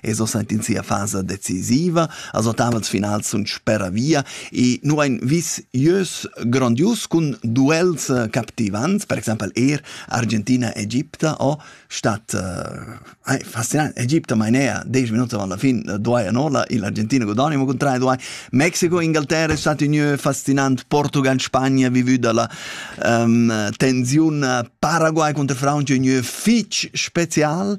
e so sent in sia fasa decisiva, a so tavels finals sun spera via e nu ein vis ieus grandius cun duels eh, captivants, per exempel er Argentina Egipta o stat eh, fascinant Egipta mainea 10 minuti alla fin eh, duai anola il Argentina godonimo con 3 duai Mexiko Inghilterra è stato un fascinant Portugal Spagna vivu dalla um, tensione Paraguay contro Francia un fitch special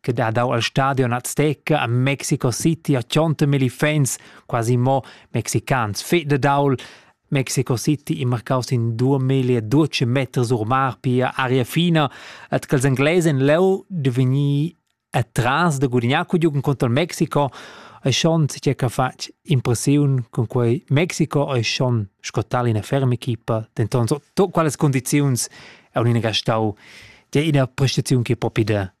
che dat dau al stadion Azteca a Mexico City a tschonta milli fans, quasi mo mexicans, fe de daul. Mexico City in marcaus in 2012 meters ur mar pia aria fina, et che els inglesen leu de vegnir atras de gudignar cu giugen contro il Mexico, e schon si che fatg impressiun con quei Mexico e schon scottal in ferm'equipa, denton so, to quales condiziuns è un'ina gastau, de ina prestazione che propi de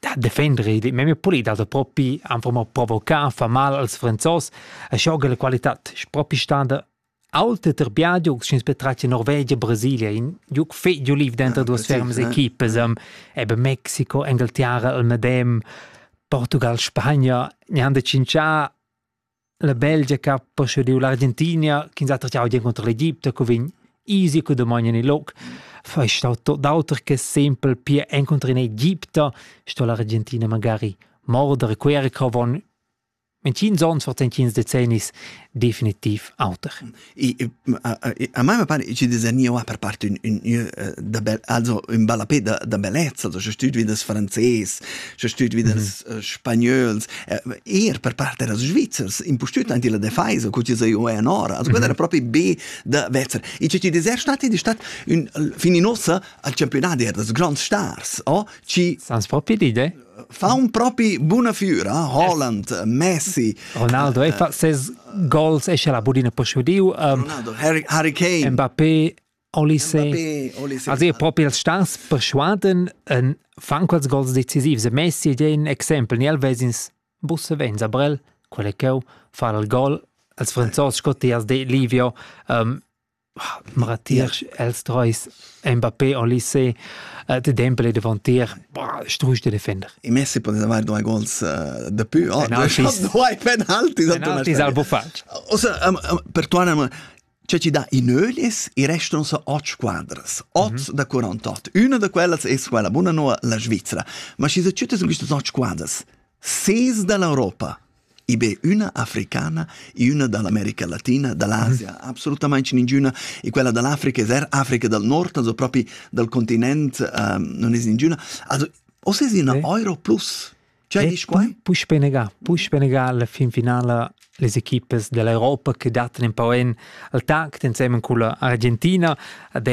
Da defender ei memia pulida da propi anfl mo provocar fa mal als Franzos e schoga la qualitad, propi standa alte ter biadiugs sch'ins betratga Norvegia, Brasilia, in giug fetg giuliv denter duas fermas equipas, eben Mexico, Engalterra, il medem, Portugal, Spagna, neanda cincià La Belgia che ha poschidiu l'Argentinia ch'ins ha tracciau di encunter l'Egipte, co vegn easy co damogn en il loc. Fai stau tot d'auter che sempel pia encunter in Egipte, sto l'Argentina magari morder e quer che von in tschins ons vor entschins decennis definitiv auter. a me me pare ci disegnò per parte un un da bel also un bella pe da, da bellezza also c'è studio das franzés c'è studio das spagnols er per parte das svizzers in postut anti la defesa cu ci sei o anora also quella era proprio be da Wetzer e ci deser stat di stat un fininosa al campionati er das grands stars oh ci sans proprio d'idee fa un propi buna füra Holland Messi Ronaldo e fa ses goals esce la budina posciudiu Ronaldo Harry Kane Mbappé Olise also ihr propi als stans persuaden en fan quels goals decisivs e Messi è un exempel ni el vesins busse venza brel quelle cheu far il gol als franzos Scottias de Livio um, Matier els treis Mbappé al lycée uh, de Dembele davantier bah, strusch de defender. I Messi poteva fare due goals uh, de più. Oh, penaltis. Due penaltis. Penaltis al bufatg. Osa, um, um, per tu Anna, cioè ci dà i nölis e restano so otto squadras, otto mm -hmm. da 48. Una da quellas è quella buona no la Svizzera, ma ci sono tutte su queste otto squadras, ses dall'Europa i be üna africana e üna da l'America Latina, da l'Asia, absolutamaing ningüna e quella da l'Africa es eir Africa dal Nord, also propi dal continent uh, non es ningüna. Also o es üna eh. Euro plus? Cioè, dici qua? Puspé negà, puspé negà alla fin finala les equipes dell'Europa che datano un po' in al tacto insieme con l'Argentina, ad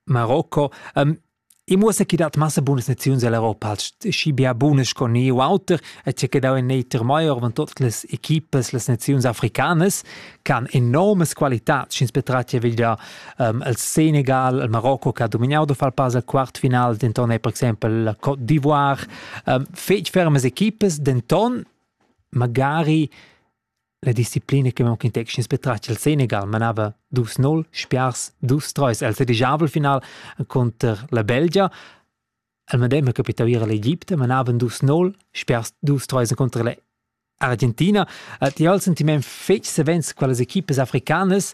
Marocco. Um, I muossa chi dat massa bunas naziuns all'Europa, schi bia bunas sco ni u auter, e che dau in eter maior van tot las equipas, las naziuns africanas, can enormes qualitats, sch'ins betrati veglia um, el Senegal, el Marocco che ha dominau da far pas al quartfinal, denton è per exempel la Côte d'Ivoire, um, fetg fermas equipas, denton magari La disciplina che mon contextins betratg il Senegal manava dus nol, spiars dus treis al sedigiavel final conter la Belgia. Al medem capitau era l'Egipte manaven dus nol, spiars dus treis conter la Argentina. Ti ha il sentiment fetg savens quelle equipes africanas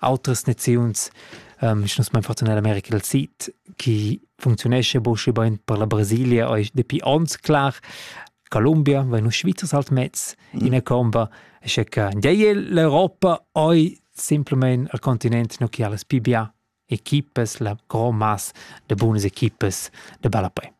Autras naziuns, ähm, ich nus mein fortuna America del Sid, chi funcziunesce boschi bain per la Brasilia, è dapi ons clar. Colombia, vai nu Schweizer halt mezz in mm. comba, e che ja l'Europa oi simplement al continent no chi ha las pibià equipes, la grand masse de buonas equipes de bella poi.